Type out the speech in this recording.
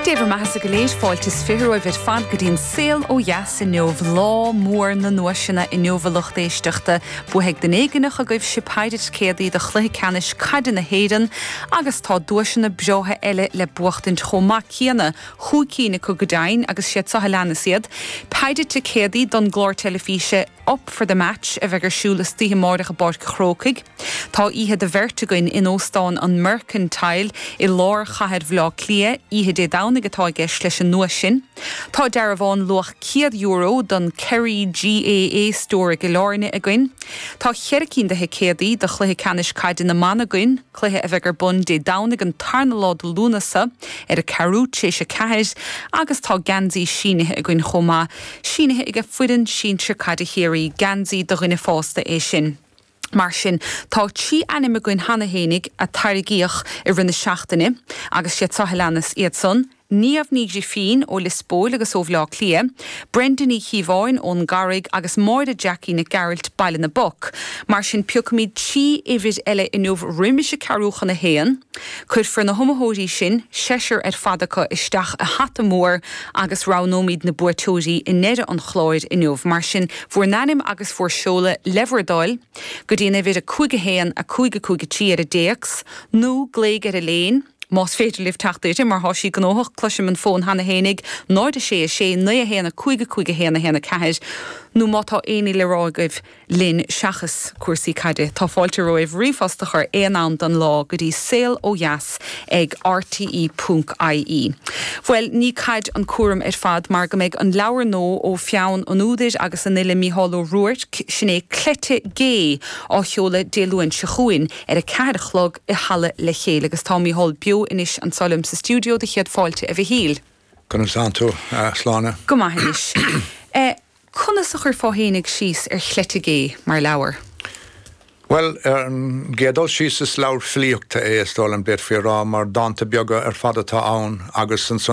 Dé bhur mbeathasa go léir, fáilte is fiche romhaibh ar fad go dtí an Saol ó Dheas inniu, lá mór na nduaiseanna inniu a lucht éisteachta. Buafaidh duine éigineach agaibhse peidhre ticéadaí do Chluiche Ceannais Caide na hÉireann agus tá duaiseanna breátha eile le buachtaint chomh maith céanna, chúig cinn acu go deimhin agus siad seo a leanas iad, peidhre ticéadaí don gclár teilifíse. Up for the Match a bheidh ar siúl istoíche amáireach i bPáirc an Chrócaigh. Tá oíche do bheirt againn in Óstán an Mercantile i lár chathair Bhaile Átha Cliath, oíche Dé Domhnaigh atá i gceist leis an nduais sin. Tá dearbhán luach €100 don Kerry GAA Store i gCill Áirne againn. Tá cheithre cinn de thicéadaí do chluiche ceannais caide na mban againn. cluiche a bheidh ar bun Dé Domhnaigh an tarna lá de Lúnasa, ar a ceathrú t'réis a ceathair, agus tá geansaí sínithe againn chomh maith, sínithe ag foireann sinsir caide Chiarraí, geansaí do dhuine fásta é sin. Mar sin, tá trí ainm againn cheana fhéinig a tarraingíodh i rith na seachtaine, agus siad seo a leanas iad san, Niamh Ní Ghrifín ó Lios Póil agus ó Bhleá Cliath, Brenda Ní Chíobháin ón gCarraig agus Máire Jackie Nic Gearailt, Baile na bPoc. Mar sin piocfaimid trí uimhir eile inniu roimis a ceathrú chun a haon. Cuirfear na hiomaitheoirí sin, seisear ar fad acu, isteach i hata mór agus roghnóimid na buaiteoirí i ndeireadh an chláir inniu. Mar sin, bhur n-ainm agus bhur seoladh le bhur dtoil go dtí an uimhir 5 1 5 5 3 ar an dtéacs nó glaoigh ar Elaine, Más féidir libh teacht uirthi, mar tá sí gnóthach, cloisim an fón cheana féinig, 0 6 6 9 1 5 5 1 1 4, nó má tá aon ní le rá agaibh linn seachas cúrsaí caide, tá fáilte romhaibh ríomhphost a chur aon am den lá go dtí saol ó dheas ag rte ponc ie. Bhuel, ní caid an cúram ar fad mar go mbeidh an leabhar nua ó pheann an údair agus an fhile Mícheál Ó Ruairc, sin é Cleite Gé, á sheoladh Dé Luain seo chugainn ar a ceathair a chlog, i Halla le Chéile agus tá Mícheál beo anois anseo liom sa stiúideo do chéad fáilte a Mhichíl. Conas tánn tú, a Shláine? Go maith anois. Conas a chuirfeá fhéinig síos ar Chleite Gé mar leabhar? Bhuel, ar an gcéad dul síos is leabhar filíochta é, is dóigh liom, d'fhéadfaí a rá, mar dánta beaga ar fad atá ann agus ansan